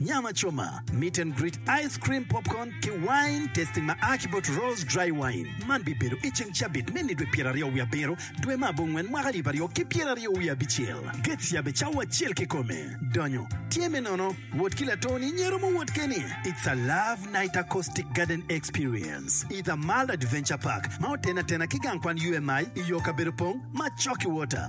Nyam acoma, meet and greet, ice cream, popcorn, ki wine tasting ma a ki bot Rose Dry Wine. Man bibedo i ceng cabit me nidwe pyeraryo wiye abiro, dwe me abongwen, mwaka alip aryo ki pyeraryo wiye abicel. Gates yabbe cawa acel kikome. Donyo tye me nono. Wot ki latoni nyero mo wot keni. It's a love night acoustic garden experience i The Mile Adventure Park ma otene atena ki gang kwan UMI i yo kabedo pong ma Chalky Water.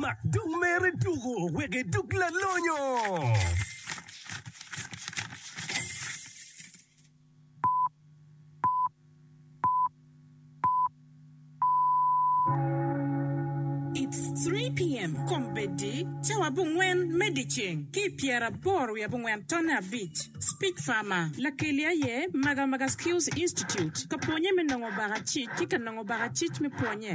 Mak dog mere tuko wek edog lalonyo. It's 3 pm kombeddi cawa abongwen me dyeceng ki i pyeraboro wiye abongwen tonne abic. Speech Farmer, Lakeli aye Magamaga Skills Institute ka pwonye me nongo baka cic ki ka nongo baka cic me pwonye.